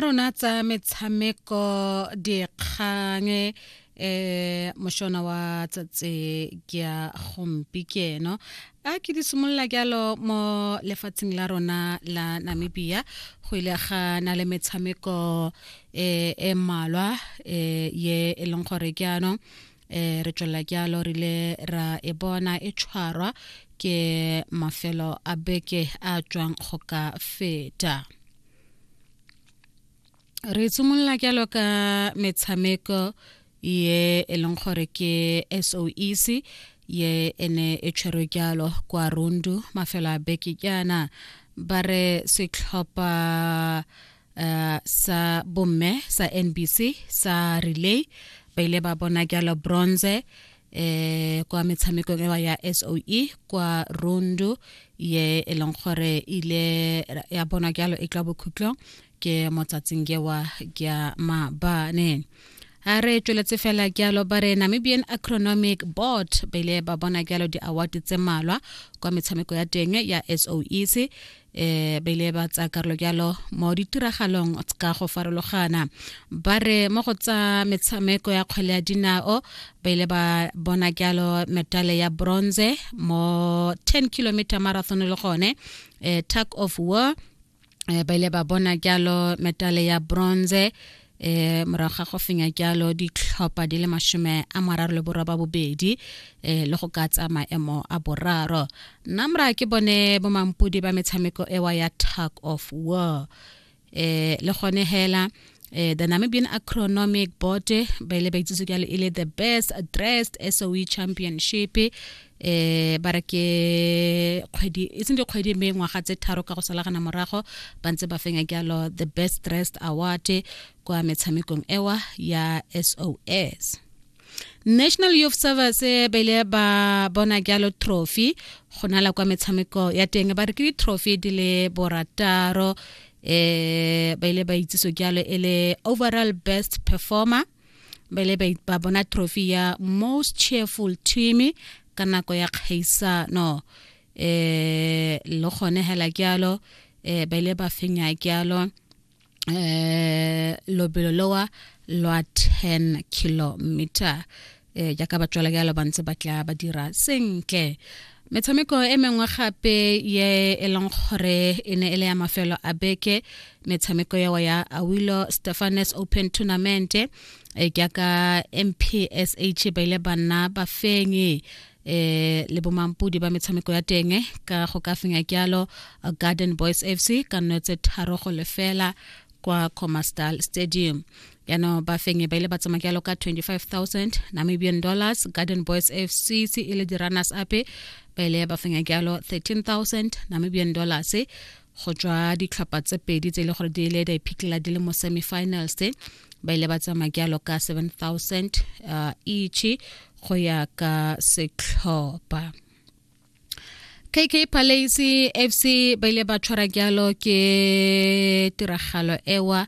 rona tsa metshameko dikgang eh moshona wa tsatse ke ya gompi ke eno a ke di simolola jalo mo lefatsheng la rona la namibia go ile ga na le metshameko eh, e mmalwa eh, ye e leng gore ke anong eh re tswela jalo re ile ra e bona e tshwarwa ke mafelo a beke a tswang go ka feta re tshimolola jalo ka metshameko ye e leng gore ke soec ye ene e tshwerwe jalo kwa rundu mafelo a beke jaana ba re setlhopha uh, sa bomme sa nbc sa relay ba ile ba bona jalo bronze eh kwa metshamekong ewa ya SOE kwa Rundu ye e leng gore ile ya bona jalo e tla bokhutlong ke motsatsing ewa ya mabane a re tsweletse fela jalo ba re namibian acronomic board ba ile ba bona jalo di-award tse malwa kwa metshameko ya teng ya soec e ba ile ba tsaya karolo jalo mo ditiragalong ka go farologana ba re mo go tsa metshameko ya kgwele ya dinao ba ile ba bona jalo metale ya bronze mo 10 kilometer marathon le gone e, tug of war e, ba ile ba bona jalo metale ya bronze e morago ga go fenya jalo ditlhopha di le masome a mararo le borwa ba bobedi e le go ka tsa maemo a boraro nna mora ke bone bomampodi ba metshameko ewa ya tug of war e le gone hela Eh, the Namibian Acronomic Board ba ile ba itsise ka le ile the best dressed SOE championship eh ba re ke kgwedi e seng dikgwedi mme ngwaga tse tharo ka go salagana morago ba ntse ba fenya jalo the best dressed award kwa metshamekong ewa ya sos national youth service eh, ba ile ba bona jalo trophy go nala kwa metshameko ya teng ba re ke ditrophy di le borataro eh ba ile ba itseso jalo e le overall best performer bele ba bona trophy ya most cheerful team ka nako ya kgaisano eh le gone hela kyalo eh bele ba fenya kyalo eh lobelo lowa lwa 10 kilometer eh jaaka ba tswela jalo ba ntse ba tla ba dira sentle metshameko e mengwe gape ye e leng gore e ne e le ya mafelo a beke metshameko yao ya awilo stephanes open tournament e eh, jaaka mpsh ba ile ba nna bafenyi eh le bomampudi ba metshameko ya teng ka go ka fenya kyalo garden boys fc ka nno tse tharo go lefela kwa comastal stadium yaanong ba fenye ba ile ba tsamaya jalo ka 25000 namibian dollars garden boys fc se e le di-runners ape ba ile ba fenya jalo 13000 namibian dollars go tswa ditlhopha tse pedi tse e le gore di ile di iphitlhela di le mo semifinals ba ile ba tsamaya jalo ka 7000 uh, each go ya ka setlhopha kk palace fc ba ile ba tshwara jalo ke tiragalo ewa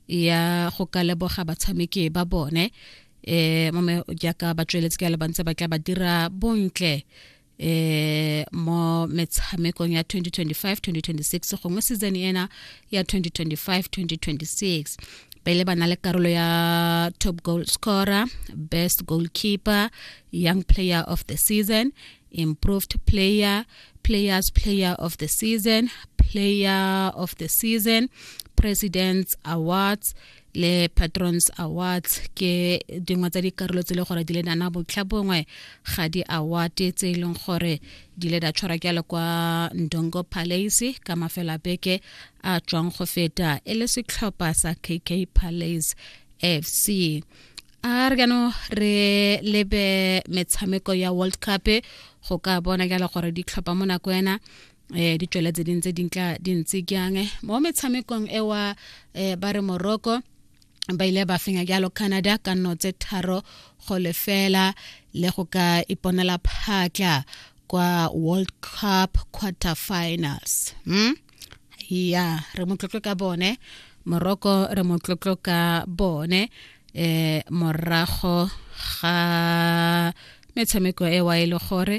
ya go ka leboga batshameki ba bone eh mame jaaka ba tsweletse ka le bantse ba tla ba dira bontle eh mo metshamekong ya 2025-2026 gongwe season ena ya 2025-2026 pele ba na le karolo ya top goal scorer best goalkeeper Young Player of the Season, Improved Player, Players Player of the Season, Player of the Season, President's Awards, le patrons awards ke dingwe tsa dikarolo tse e le gore di le nana botlha bongwe ga di award tse e leng gore di le da tshwara ke le kwa ndongo palace ka mafela beke a tswang go feta e le setlhopha sa kk palace fc a re kano re lebe metshameko ya world cup go ka bona jalo gore di tlhopha mo nako ena um di tswele tse ding tse dintla di ntse jang mo metshamekong e wa um ba re morocco ba ile ba fenya jalo canada ka nno tse tharo go lefela le go ka iponela phatla kwa world cup quarter finals hmm? ya re motlotlo ka bone moroko re motlotlo ka bone eh morago ga metshameko e wa e le gore